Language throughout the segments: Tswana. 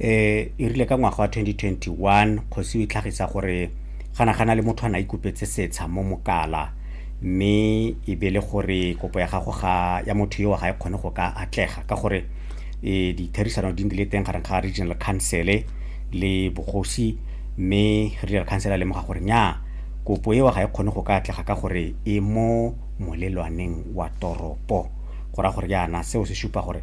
eh e rile ka ngwaga wa 2021 kgosi e tlhagisa gore gana gana le motho a na ikopetse setsha mo mokala mme e be le gore kopo ya gago ga ya motho yo ga e kgone go ka atlega ka gore e ditherisano di ndile teng gareng ga regional council le bogosi mme regional council a lemoga gore nya kopo eo ga e kgone go ka atlega ka gore e mo molelwaneng wa toropo go ra gore yana seo se supa gore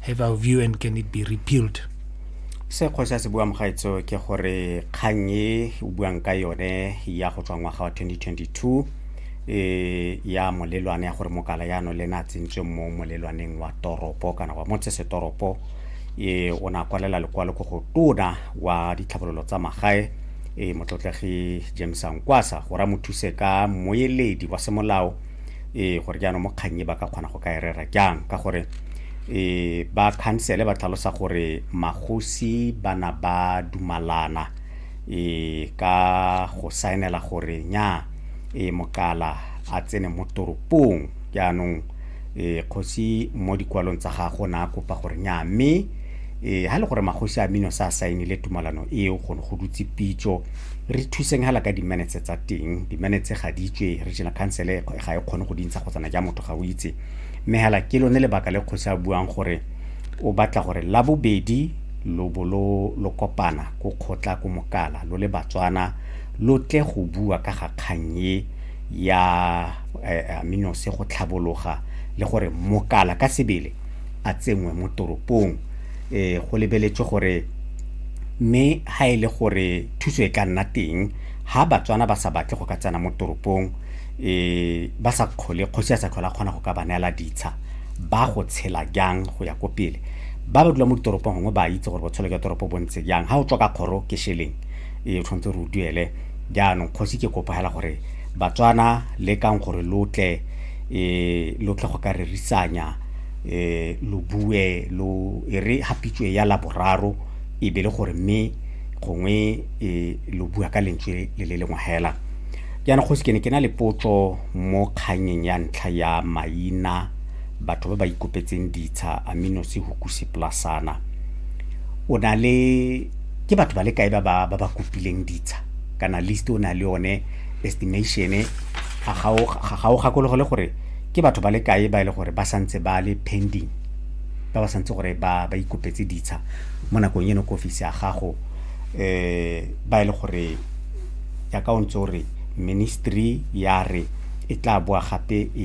Have our view and can it be repealed? se kgose a se buang gaetso ke gore kgang e o buang ka yone ya go tswa ngwaga wa 2022 e ya molelwane ya gore mokala yano le ne a tsentswe mo molelwaneng wa toropo kana wa motsesetoropo e o ne a kwalela lekwalo ko go tona wa ditlhabololo tsa magae e motlotlegi james ankwasa gore a mo thuse ka moeledi wa semolao e gore jaanong mo kgang e ba ka kgona go ka e rera jang ka gore e ba khansele ba tlhalosa gore magosi ba na ba dumalana e ka go saenela gore nya e mokala a tsene mo toropong jaanong e kgosi mo dikwalong tsa gago na kopa gore nya mme ee ha le gore magosi a mino sa saenile tumalano eo go ne go dutse pitso re thuseng hala ka dimenetse tsa teng dimenetse ga di tswe regional council e ga e kgone go dintsha go tsana ja motho ga o itse mme hala ke lone lebaka le kgosi a buang gore o batla gore la bobedi lo bo lo lo kopana ko kgotla ko mokala lo le batswana lo tle go bua ka ga kgang e ya eh, aminose go tlhabologa le gore mokala ka sebele a tsenngwe mo toropong eh go lebeletswe gore mme ha e le gore thuso e ka nna teng ha batswana ba sa batle go ka tsena mo toropong eh ba sa kgole kgosi ya sa tlhola kgona go ka ba neela ditsha ba go tshela jang go ya ko pele ba ba dula mo ditoropong gongwe ba itse gore botshelo jwa toropo bo ntse jang ha o tswa ka kgoro ke sheleng e tshwanetse re o duele jaanong kgosi ke kopo hela gore batswana le kang gore lotle eh lotle go ka rerisanya eh, lo bue lo e re hapitswe ya laboraro e be le gore mme gongwe eh, lo bua ka lentswe le le lengwe hela jaana kgosi ke ne ke na le potso mo kganyeng ya ntlha ya maina batho ba ba ikopetseng ditsha amino se hukusi plasana o na le ke batho ba le kae ba ba ba ba kopileng ditsha kana list o na le yone estimation ga ga o gakologe le gore ke batho ba le kae ba e le gore ba santse ba le pending ba ba santse gore ba ba ikopetse ditsha mo nakong eno ko ofisi ya gago um ba e le gore yaka o ntse o re ministry ya re e tla boa gape ya